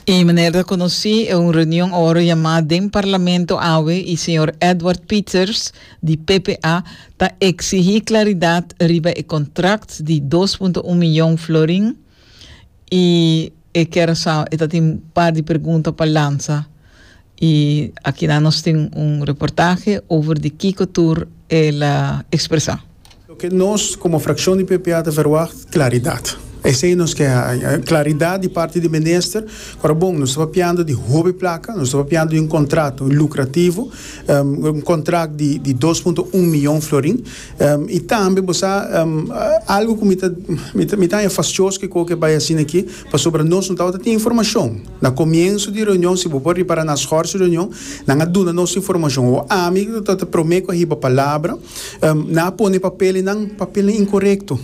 E manera ta conoci e un reunion oro yama den parlamento awe y señor Edward Pieters di PPA ta exigi claridad riba e contract di dos punto un millon florin y e kera sa e ta tin par di pregunta pa lansa. Y akinan nos tin un reportahe over di kico tur el a expresa. Loke nos como fraccion di PPA ta verwacht, claridad. Esey nos ke haña, claridad di parti di Minister. Cu ta bon, nos ta papiando di hopi placa, nos ta papiando di un contrato lucrativo, un contract di di dos punto un miyon florin. Y tambe bo sa, algo cu mi ta mi ta haña fascioso kico cu e bay asina aki, pasobra nos no tabata tin informacion. Na comienso di reunion, si bo por ripara na schor su reunion, nan a duna nos informacion. Bo ami cu ta prome cu a hiba palabra, nan a pone papelnan, papelnan incorecto.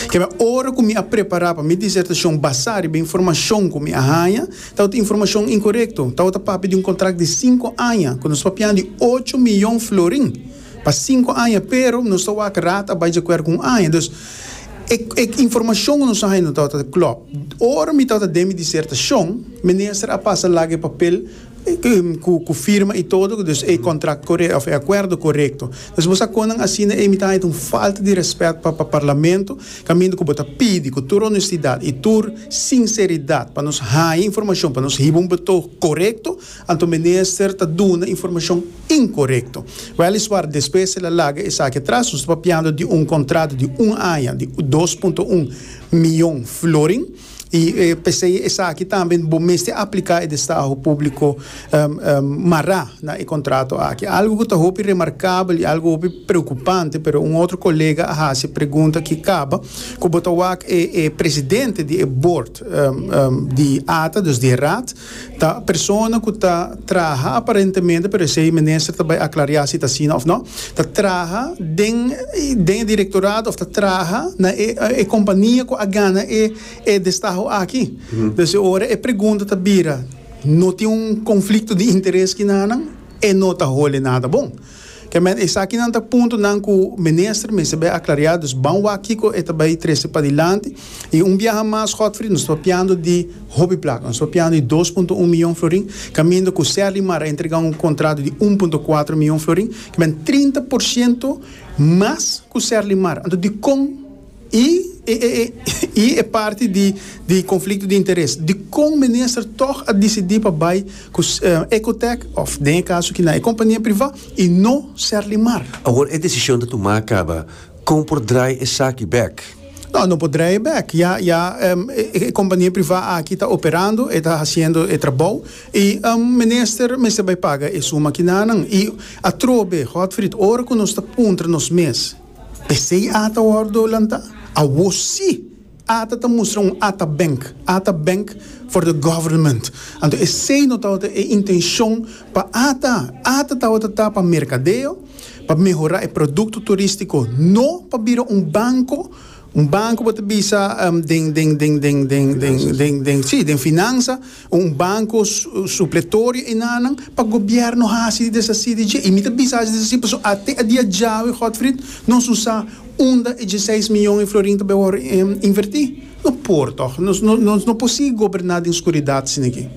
Kebe, ora cu mi a prepara pa mi disertacion basa riba informacion cu mi a haya, tawata informacion incorecto, tawata papia di un contract di cinco aña cu nos papia di ocho miyon florin. Pa sinku aña, pero nos ta wak rat a bai djakuerdo ku un aña. Dus, e e informashon ku nos a haña no tabata ta klòp. Ora mi tabata den mi disertashon, minister a pasa laga e papel ku ku firma i todo, dus e kontrakt korekto òf e akuerdo korekto. Dus bo sa kon nan asina ei mi ta haña ta un falta di rèspèt pa pa parlamento, kaminda ku bo ta pidi ku tur onestidat i tur sinseridat pa nos haña informashon pa nos hiba un betog korekto, Anto minister ta duna informashon inkorekto. Weliswar despues el a laga esaki atras. Nos ta papiando di un kontrato di un aña di dos punto un miyon florin i p'esei esaki tambe bo mester apliká e destaho públiko mará na e kontrato aki. Algu ku ta hopi remarkabel i algu hopi preokupante pero un otro kolega a hasi e pregunta ki kaba ku bo ta wak e presidente di e bord di ata, dus di e raad, Ta persona ku ta traha aparentemente, pero esei minister ta bai aklariá si ta asina òf nò, ta traha den den e direktorato òf ta traha na e e kompania ku a gana e e destaho aki. Pues e ora e pregunta ta bira, no tin un konflikto di interes kina nan? E no ta hole nada bon. Kemen esakinan ta puntonan ku minister mester bai aklariá, dus ban wak kiko e ta bai trese padilanti. I un biaha mas, Godfrey, nos ta papiando di hopi plata, nos ta papiando di dos punto un miyon florin, kaminda ku Serly Mar a entregá un kontrato di un punto kuater miyon florin, kemen trinta por siento mas ku Serly Mar. Anto dikon? I i e parti di di conflicto di interes. Dicon minister toch a dicidi pa bay cu Ecotech of den e caso aki na e compania priva y no ser limar? Awor e decision ta tuma caba, con por draai esaki bek? No, no por draai bek. Ya ya e compania priva aki ta operando, e ta haciendo e trabao y minister mester bay paga e suma aki nanan. Y atrobe, Godfried, ora cu nos ta puntra nos mes. P'esei ata wòrdu lantá. Awor sí, ata ta mustra un ata bènk, ata bènk for the government. Anto esei no tabata e intenshon pa ata, ata tabata ta pa merkadeo, pa mehorá e produkto turístiko, no pa bira un banko, un banko bo ta bisa den, den, den, den, den, den, den, den, sí, den finansa. Un banco supletorio e nanan pa gobierno haci di deshaci di dje. Y mi ta bisa haci deshaci paso ate a dia djawe Godfrid nos usa unda e dieseis miyon e florin ta bay wor inverti. No por toch. Nos no por sigui goberna den scuridad sina aki.